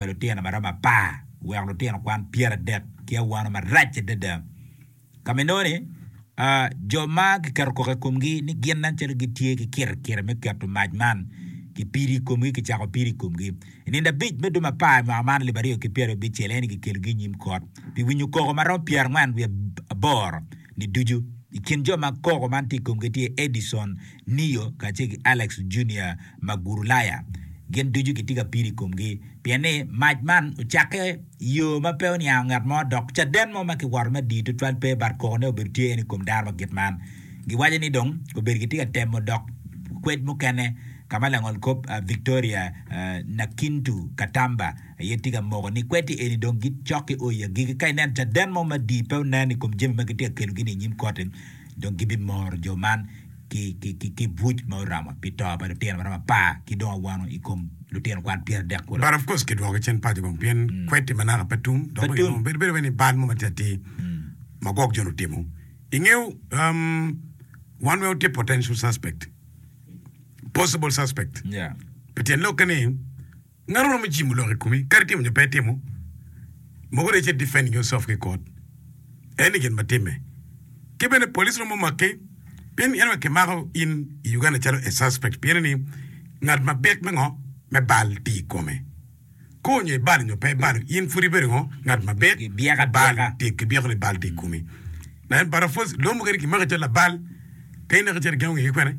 pa lutino ma romo apar oweko lutino kwan pyeradek ki awano marac adada. Ka ma inongo ni jo ma kiketo koko i komgi ni gin nen calo gitye ki kirikiri me keto mac man kipido i komgi, kicako pido i komgi. I nino abic me dwe ma apar i mwaka man alip aryo ki pyerabicel aye ni kikelogi i nyim kot pi winyo koko ma romo pyerangwen wiye aboro. ni ducu. I kin jo ma koko man tye i komgi tye Edison, Neo, kacel ki Alex Junior ma Gurulaya. Gin ducu gitye ka pido i komgi pien ni mac man ocakke i yo ma pe oniango ngat mo dok caden mo ma kiwoto me dii tutwal pe but kokone obedo tye en i kom dano ma kit man. Giwaco ni dong obedo gitye ka temo dok kwed mukene ka ma langolkop Victoria Nakintu Katamba Aye tika moko ni kweddi eni dong gicok ki o i agikki? Ka ineno caden mo madii pe onen i kom jami ma gitye ka kelogi-ni i nyim kotti, dong gibimoro jo man ki buc ma oromo pi to pa lutino ma romo apar ki dong awano i kom lutino kwan pyeradek kulo. But of course kidwokogi cen paco kong pien kweddi ma naka pe tum dok bene onongo bedo wai ni bal mo matye atir ma gwok jo-ni otimo. I ngeyo, wan weng watye potential suspect, possible suspect, pi tyen lokke ni, Ngati romo jimo lok i komi kadi timo nyo pe timo mogo rec e defend yourself ki court eni gin ma time ki bene police romo make pien anyway ki mako in i Uganda calo a suspect pien ni ngat ma bit me ngo me bal tye i kome koo nyo i balo nyo pe ibalo in pud ibedo ngo ngat ma bit bal tye ki byeko ni bal tye i komi naen but of course lomo kadi ki maki calo labal ka ineko calo i gengo nge ki kwene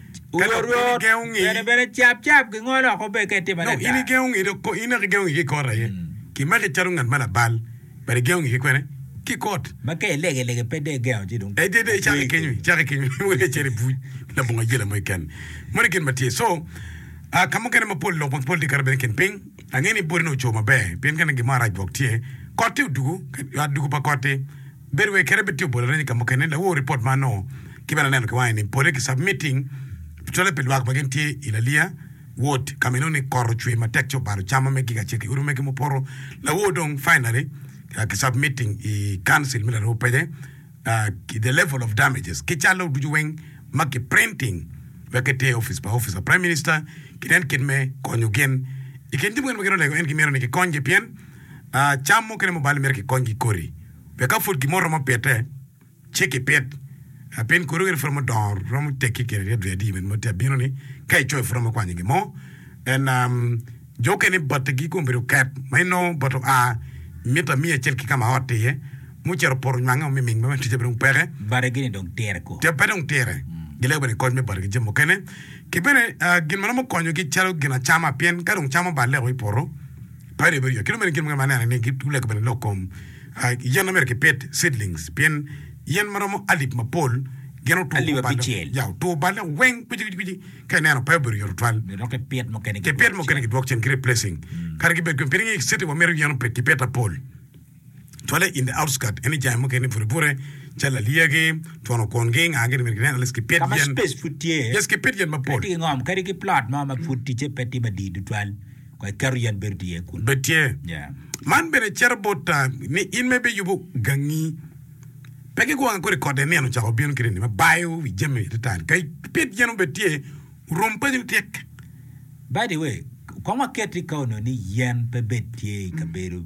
Ka dok bino igengo ngi. Kadi bene cap cap gingolo woko obedo ka itimo adada. Dok in igengo ngi dok ko, in dok igengo ngi ki kot aye. Ki make calo ngat ma labal, but igengo ngi ki kwene? Ki kot. Ma ka ilege lege pe de igengo ci dong. Ey de de icako ki kenyo, icako ki kenyo ni wene icito ibuc labongo ayela mo keken. Moni gin ma tye. So, ah, ka mukene mapol lok mapol tye kato bene i kin piny. Angeyo ni boti ni oco maber, pien ka neno gin mo arac gwok tye. Kot-ti odugu, ka, ah, dugu pa kot-ti. Bedo wai kadi bitiyo bot areny ka mukene, lawor ripot man ongo ki bene aneno ki wange ni pole ki submitting cwale pi lwak ma gin tye i Lalia ward kama inongo ni kor ocwe matek ci obalo cam ma me giga acel ki odi mege mupoto lawor dong finally ki submitting i council me laroo pece ki the level of damages ki calo ducu weng ma ki printing wek ki ter office pa office pa prime minister ki nen kit me konyo gin i kin jami mukene ma gin olego en ki myero ni ki kony gi pien Cam mukene ma obalo myero kikony ki kodi wek ka pud gin mo romo pite ci kipit pien kodi okene pud romo dongo romo tekki kine ryet ryet i ma tye abino ni ka icoyo pud romo kwanyo gin mo and jo okene bati gi kong obedo oket ma inongo bati oa mita miya acel ki ka ma ot tye iye mucito opoto onywangge o miming ma bene ticce pe dong peke Bati gini dong tire ko. pe dong tire gilego bene kony me bati ki jami mukene ki bene gin ma romo konyogi calo gin acama pien ka dong cam oballe o i poto Padi obedo yot ki dong bene gin muken ma aneno ni gulego bene lok kom yen ma myero kipit, seedlings, pien yen ma romo alip mapol gin otwo Alip oballe, abicel. ya, otwo oballe weng kwici kwici kwici ka ineno pe obedo yot tutwal. Myero dong kipit mukene Kipit mukene kidwok cen ki replacing kadi kibed kene pien ingeyo citi wamito yen opit kipit lapol. cwale in the outskirt ene jami mukene bute bute calo lalyagi, twono kwongi, nga gin myero ginen, lec ki pit Ka ma yen, space pud tye, yes ki pit yen mapol. wek gingom kadi ki plot mo ma pud ticce pe tye madii tutwal, kong iketo yen bedo tye iye kunu. Bed tye. Yeah. Man bene cito bot ah, ni in ma ibiyubo gangi, pe ki gwonga kodi kode nino ocako bino kit eni ma bayo wi jami adada. Ka ipit yen obed tye, orom paco ni tyek. By the way, kong waket i ka onongo ni yen pe bed tye i kabedo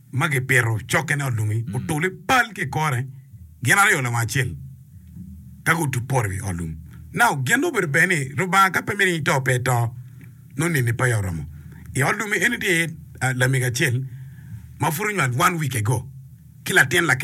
ma gipito cokkene olungi otul i pal ki i kore gin aryo lawang acel ka gutup poro i wi ot lum. Now, gin dong obedo ber ni Lubanga ka pe miti ni to pe eto, nongo nini pe aye oromo. I ot lum-mi eni tye iye lamego acel ma pud onywal one week ago ki latin lakene.